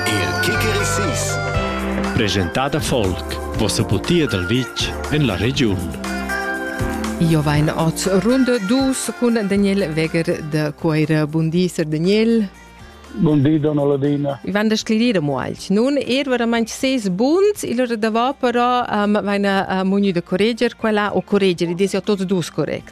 Il Kickerisis Presentada folk Vossa butia dal vitg en la regiun Io vain oz runde dus cun Daniel Weger de Coira. Bun di, Sir Daniel. Bun di, donna Ladina. I van da sclerire mo alch. Nun er veramente seis buns, il ora da va però um, vaina uh, mugnu de correger quella o correger, i desi a tots dus correct.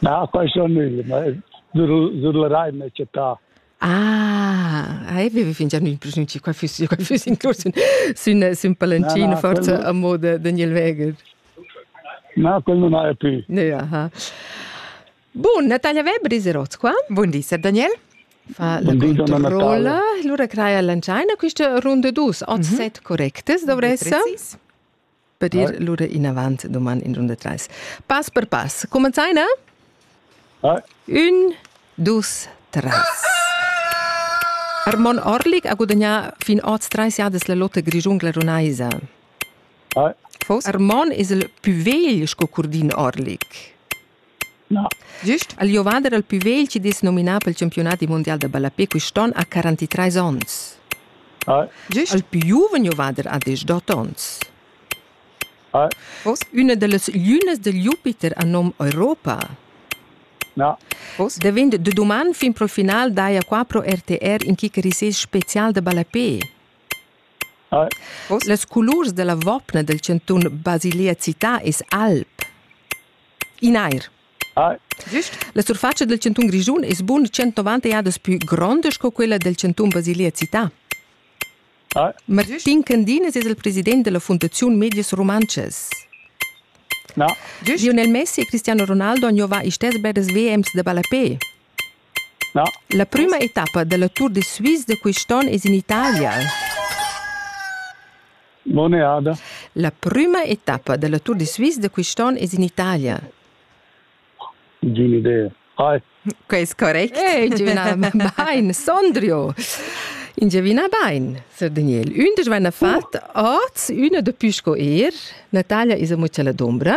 Na, questo nu, ma sur la rai m'he chattà. Ah, hai vivi fingià ün prognuci qua füss io qua füss incurs sün sün pallantino forza amo da Daniel Weger. Na, quel non haja più. Ne, aha. Bun, Natalia Weber is erots qua. Bun di, Sir Daniel. Fa la controlla. Lura craia l'angiaina quista runda dus, 8-7 correctes, dovressa. Per dir lura inavant doman in runda trais. Pass per pass. Cumenzaina? Un, dus, tres. Armon Orlik ha gudagnà fin oz trais jadas la lotta grischungla runaisa. Fos? Armon es il pü vegl sco Curdin Orlik. Gist al giovader il pü vegl chi'd es nominà pel champiunadi mundial da ballapè quist'on ha 43 ons. Gist il pü giuven giovader ha desch-dot ons. Hoz üna da las glünas da Jupiter a nom Europa. Davent da duman fin pro final daja qua pro RTR in chi cheriss es special da ballapè. Las culurs da la vopna dal chantun Basilea Città es alp. In eir. Ah. Güst? La surfatscha dal chantun Grischun es bun 190 jadas pü gronda sco quella del chantun Basilia Città. Ah. Martin Candinas es il president della Fundaziun Medias Rumantschas. Na. Lionel Messi e Cristiano Ronaldo han giovà istess bgeras WMs da ballapè. La prüma etappa dalla Tour de Suisse da quist'on es in Italia. Bonne Jahre. La prüma etappa dalla Tour de Suisse da quist'on es in Italia. Giune idee. Hi. Quest correct. Hey, giovina bain, Sondrio. Ingiavina bain, sir Daniel. Ün desch vaina fat oz üna da pü sco er. Natalia is amo la d'ombra.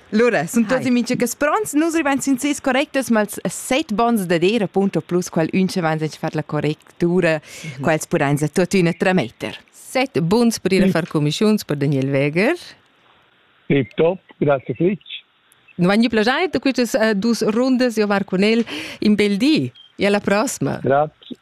Lura sun tuotti mincha cas pronts. Nus rivain sin seis correctas, ma els set bons dad eir appunto plus qual ün cha vains fat la correctura, mhm. quels pudains tuottüna trametter. Set buns per ir a far comischiuns per Daniel Weger. E top, grazie Fritsch. Non vagni plagiair da quistas uh, dus rundas, io var con el in bel di. E alla prossima. Grazie.